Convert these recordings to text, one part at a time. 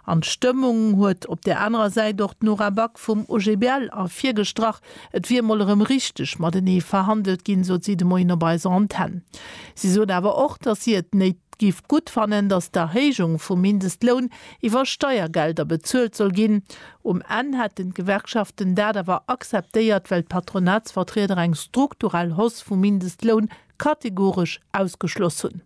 An d'Stëmmung huet op där anerer Säit och d'Nora Back vum OGBL ervirgestrach. Et wier emol erëm richteg matenee verhandelt ginn, sot si de Moien op eiser Antenn. Si sot awer och, datt si et néit giff gutt fannen, datt d'Erhéijung vum Mindestloun iwwer Steiergelder bezuelt soll ginn. Um Enn hätten d'Gewerkschaften dat awer akzeptéiert, well d'Patronatsvertrieder eng strukturell Hausse vum Mindestloun kategoresch ausgeschloss hunn.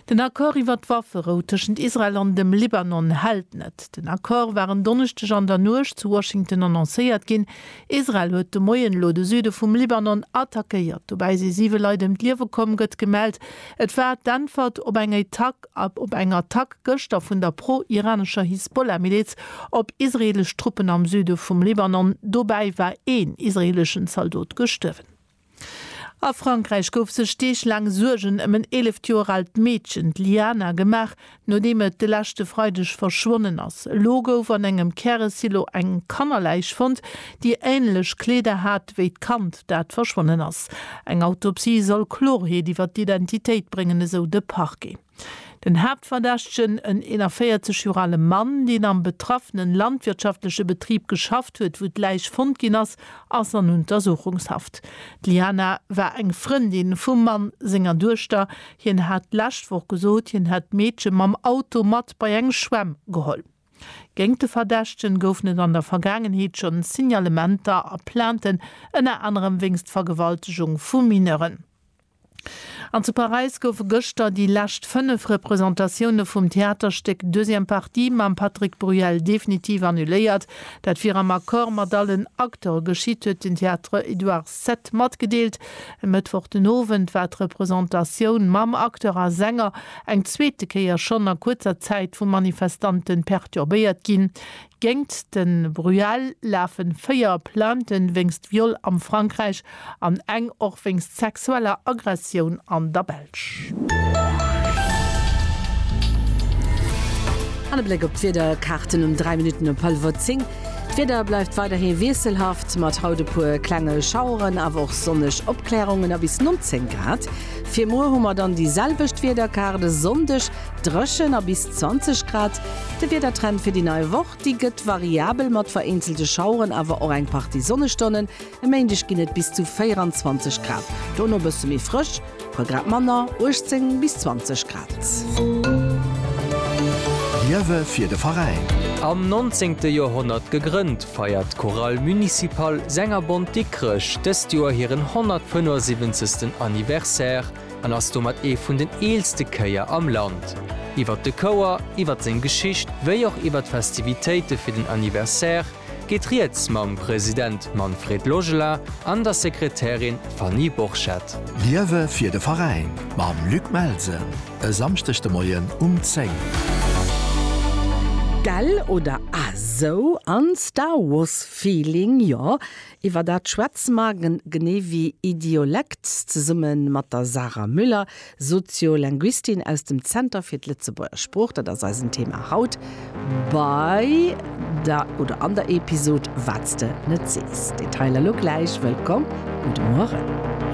Den Accord iwwer d'Wafferou tëschent Israel an dem Libanon hält net. Den Accord war en Donneschdeg an der Nuecht zu Washington annoncéiert ginn. Israel huet de Moien elo de Süde vum Libanon attackéiert. Dobäi si siwe Leit ëm d'Liewe komm, gëtt gemellt. Et war d'Äntwert op eng op eng Attack gëschter vun der pro-iranescher Hisbollah-Miliz op israeelesch Truppen am Süde vum Libanon. Dobäi war een israeeleschen Zaldot gestuerwen. A Frankräich gouf sech Deeg laang Suergen ëm en 11 Joer aalt Meedchen, d'Liana, gemaach, nodeem et de leschte Freideg verschwonnen ass. Elo gouf an engem Käresilo eng Kannerläich fonnt, déi änlech Kleeder hat wéi d'Kand, dat verschwonnen ass. Eng Autopsie soll Klorheet iwwer d'Identitéit bréngen, esou de Parquet. Den Haaptverdächtegen, en 41 Joer ale Mann, deen am betraffene landwirtschaftleche Betrib geschafft huet, wou d'Läich fonnt ginn ass, ass an Untersuchungshaft. D'Liana war eng Frëndin vum Mann senger Duechter. Hien hat d'lescht Woch gesot, hien hätt d'Meedche mam Auto mat bei eng Schwämm geholl. Géint de Verdächtegen goufen et an der Vergaangenheet schonn Signalementer a Plainten, ënner anerem wéinst Vergewaltegung vu Mineuren. An zu Paräis goufe gëschter déi lescht 5 Representatioune vum Theaterstéck Deuxième partie mam Patrick Bruel definitiv annuléiert. Dat wier am Accord mat allen Acteure geschitt, huet den Théâtre Édouard. Set matgedeelt. E Mëttwoch den Owend war d'Representatioun mam Acteur a Sänger eng zweete Kéier schonn a kuerzer Zäit vu Manifestante perturbéiert ginn. Géingt de Bruel lafe véier Plainte wéinst Viol am Frankräich an eng och wéinst sexueller Aggressioun an der Belsch. An e Bléck op d'Wiederkaarten um 3 Minutten op hallwer 10. D'Wieder bleift weiderhi wiesselhaft, mat haut e puer klenge Schaueren, awer och sonneg Opklärungen a bis 19 Grad. Fir muer hu mer dann déi selwecht Wiederkaart, e Sonndeg dréchen a bis 20 Grad. De Wiedertrend fir déi nei Woch, déi gëtt variabel mat vereenzelte Schaueren, awer och eng Partie Sonnestonnen. E Méindeg ginn et bis zu 24 Grad, dono bësse méi frësch, puer Grad manner, 18 bis 20 Grad. Liewe fir de Veräin! Am nonzéngte Joerhonnert gegrënnt, feiert d'Chorale Municipale Sängerbond Dikrech dëst Joer hiren 175. Anniversaire an ass domat ee vun den eelste Chéier am Land. Iwwert de Chouer, iwwert seng Geschicht wéi och iwwert d'Festivitéite fir den Anniversaire, geet rieds mam President Manfred Logela an der Sekretärin Fanny Borchert. Liewe fir de Veräin mam Luc Melsen e Samschdeg de Moien um 10. Gell oder a sou an Star Wars Feeling jo. Iwwer dat schwätze mer, genee wéi Idiolekt, zesumme mat der Sarah Müller, Soziolinguistin aus dem Zenter fir d'Lëtzebuerger Sprooch. Dat ass eisen Thema haut bei der oder an der Episod Wat s de net sees. Detailer lo gläich. Wëllkomm an de Mueren.